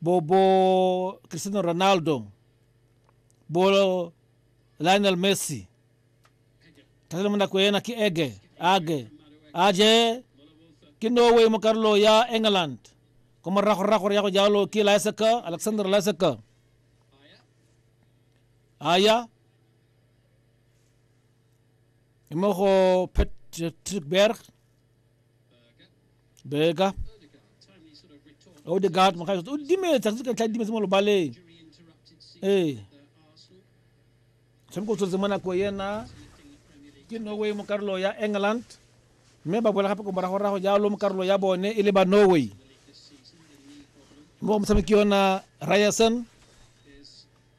Bobo Cristiano Ronaldo, bolo Lionel Messi. Tazama muna kwena ki ege, age, aje ki Norway mo karlo ya England. Kuma rako rako ya ko jalo ki Laisaka, Alexander Laisaka. Aya. Imo ko Patrick Berg. Beka. Odegaard mo gae o dimetsa se ka tla dimetse mo lobaleng. Ee. Tshameko tsotse mo nako yena ke Norway mo karolo ya England. Mme ba boela gape ko morago rago jalo mo karolo ya bone e le ba Norway. Mo motshameki yona Ryerson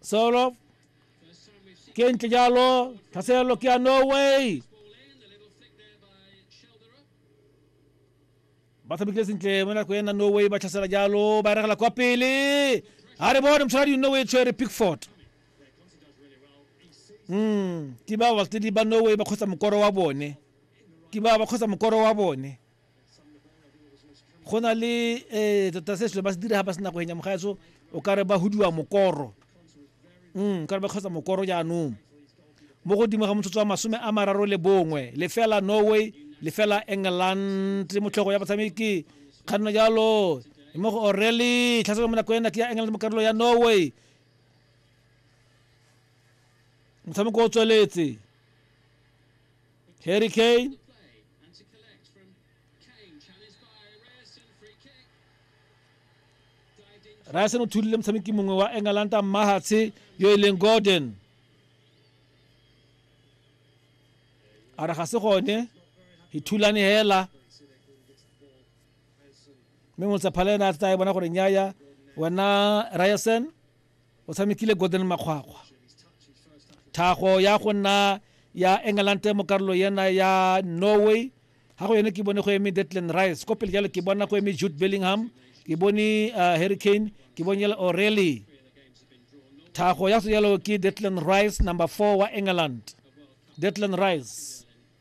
solo ke ntle jalo tlhaselelo ke ya norway ba tshamekile sentle mo nako ena norway ba tlhasela jalo ba regela kwa pele ga re bone motshwaradi norway tshwere pickford mm ke ba baltedi ba norway ba kgotsa mokoro wa bone ke ba ba kgotsa mokoro wa bone go na le um tota se selo ba se dira ga ba se nako enya mogaetso o ka re ba hudiwa mokoro um ka re ba kgotsa mokoro jaanong mo godimo ga motsotso wa masome a mararo le bongwe lefela norway lefela england motlhogo ya batshameki kganno jalo mo go orele tlhaselo mo nako ena ke ya england mo karolo ya norway motshameko o tsweletse harry kane And to collect from Kane, challenged by Ryerson, free kick. Ryerson o thulile motshameki mongwe wa Engalanta Mahatshe yo e leng Gordon. A re ga se gone, e thulane hela. Mme Motsephala ena a tla e bona gore nyaya wena Ryerson O tshamekile Gordon Makgwakgwa. Thago ya go nna ya England mo karolo yena ya Norway ga go yone ke bone go eme Declan Rice ko pele jalo ke bona go eme Jude Bellingham ke bone uh, Harry Kane ke bone jalo O'Reilly thago ya go jalo ke Declan Rice number 4 wa England Declan Rice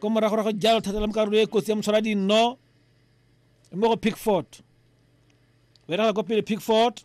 ko moragorago jalo thata la mo karolo e kotsi ya motshwara dinno mo go pickford berega ko pele pickford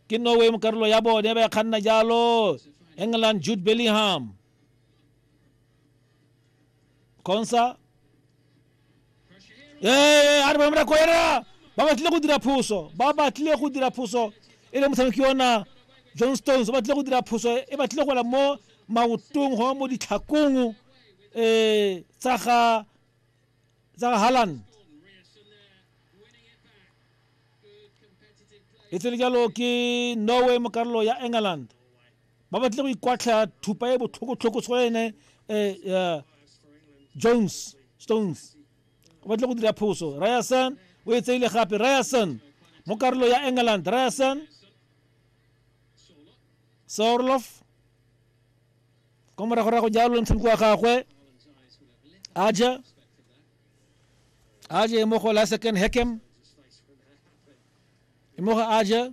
ke norway mo karolo ya bone ba ya kganna jalo england jude bellingham consa ee a re bona mrako ena ba batlile go dira phoso ba batlile go dira phoso e le motshameki ona john stones o batlile go dira phoso e batlile go la mo maotong go mo ditlhakong um tsa ga tsa ga haland e tsele jalo ke norway mo karolo ya england ba batle go ikwatlha thupa e botlhokotlhoko se go ene um jones stones o batle go dira phoso ryerson o e tseile gape ryerson mo karolo ya england ryerson sorlof ko moragorago jalo ntshameko wa gagwe aja aja e mo go la second hackem e mo go aja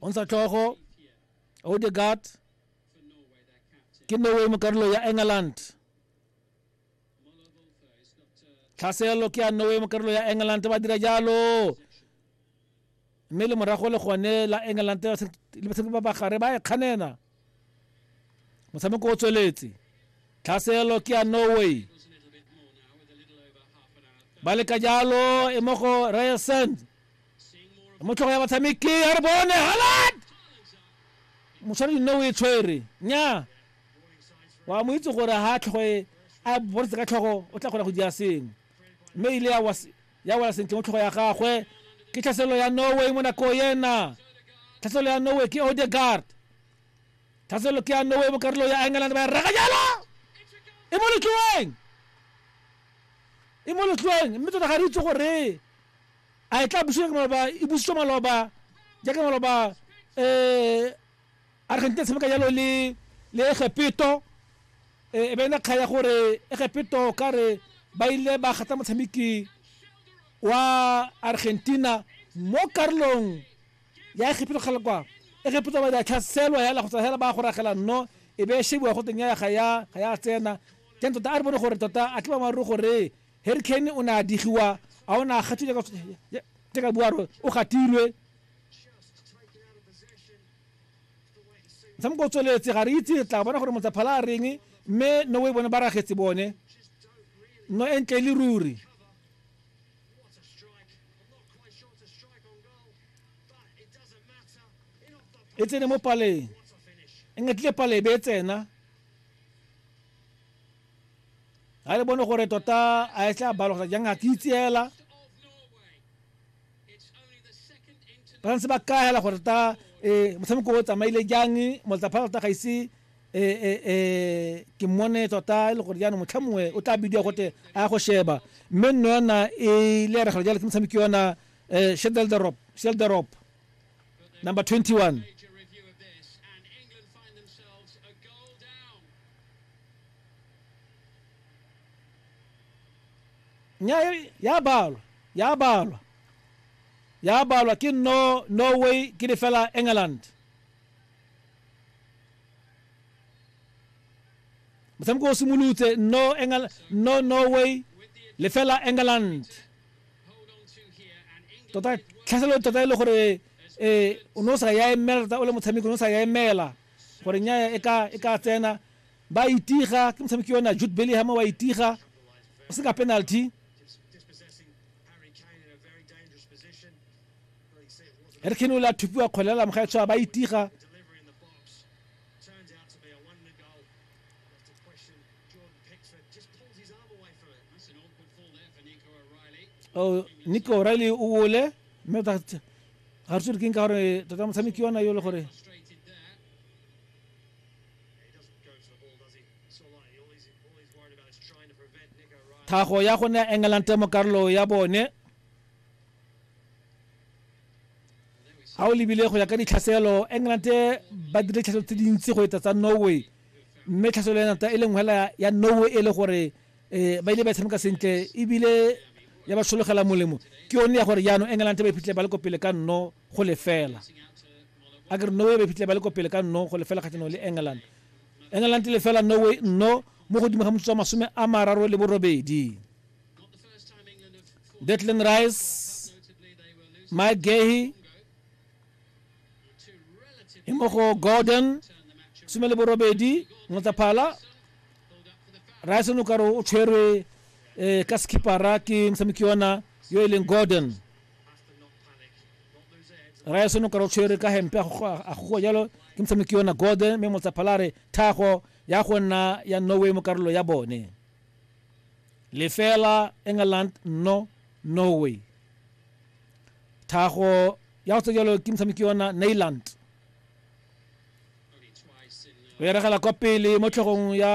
o ntsha tlhogo odegaard ke norway mo karolo ya england tlhaselo ke ya norway mo karolo ya england ba dira jalo mme le morago le gone la england le batshameki ba bagare ba e kganena motshameko o tsweletse tlhaselo ke ya norway ba leka jalo e mo go ryerson e mo tlhogo ya batshameki a re bone halad motshware dino o e tshwere nya wa mo itse gore ha tlhogo e a bontshe ka tlhogo o tla kgona go dira sengwe mme ile ya wa ya wela sentle mo tlhogo ya gagwe ke tlhaselelo ya norway mo nako ena tlhaselelo ya norway ke odegard tlhaselelo ke ya norway mo karolo ya england ba e rega jalo e mo letloweng e mo letloweng mme tota ga re itse gore a e tla buswa ke maloba e busitswe maloba jaaka maloba um Argentina e tshameka jalo le le Egepeto e be ena kga ya gore Egepeto ka re ba ile ba gata motshameki wa Argentina mo karolong ya Egepeto kgale kwa Egepeto ba ya tlhaselwa hela go tsa hela ba go ragela nno e be shebiwa go teng ya ga ya ga ya tsena teng tota a re bone gore tota a tliba maruru gore Harry Kane o ne a digiwa a o ne a gatswe ka buaro o gatilwe motshameko o tsweletse ga re itse re tla bona gore motsaphala a reng mme no o e bone ba ragetse bone no e ntle le ruri e tsene mo paleng e ngetlile pale e be e tsena ga re bone gore tota a e tla balogela jang a ke itseela ba ntse ba kaya la gore ta eh motshameko o tsamaile jang motsa pharata ga ise eh eh eh ke mone tota e le gore jaanong motlha mongwe o tla bidiwa gote a ya go sheba mme nno yona e le ya regalo jalo ke motshameki yona eh sheldel the rope sheldel the rope number 21 Nya e, ya balwa, ya balwa, ya balwa ke no, no way ke le fela England. Motshameko o simolotse, no, England, no, no way le fela England. Tota, tlhaselo tota e le gore e o ne o sa ya emela tota o le motshameko o ne o sa ya emela gore nya e ka e ka tsena ba itiga ke motshameki ona jude bellingham wa itiga o seka penalty harry kane o le a thupiwa kgolela moga e tshwa ba itiga oh, nico o'reilly o wole mme ga re tsore keng ka gore tota motshameki ona yo le gore tlhago ya go nea england temo karolo ya bone ga o lebile go ya ka ditlhaselo england ba dire tlhaselo tse dintsi go etsa tsa norway mme tlhaselo ya nata e leng hela ya norway e le gore um ba ile ba tshameka sentle ebile ya ba sologela molemo ke yone ya gore jaanong england ba iphitlhele ba le ko pele ka nno go lefela a ke re norway ba fitlhile ba le ko pele ka nno go lefela kgatlhanong le england england le fela norway nno mo godimo ga motsotso wa masome a mararo le borobedi detlin rice mike gahy e mo go gordon some le borobedi motsaphala rice o ne o kare o tshwerwe um ka skipara ke mosamiki ona yo e leng gordon raya seno ka rotshwere ka hempe a gogoa jalo ke motshameki yona gode mme motsaphalare thago ya go nna ya norway mo karolo ya bone lefela england no norway thago ya go tse jalo ke motshameki yona nailand o eregela kwa pele mo tlhogong ya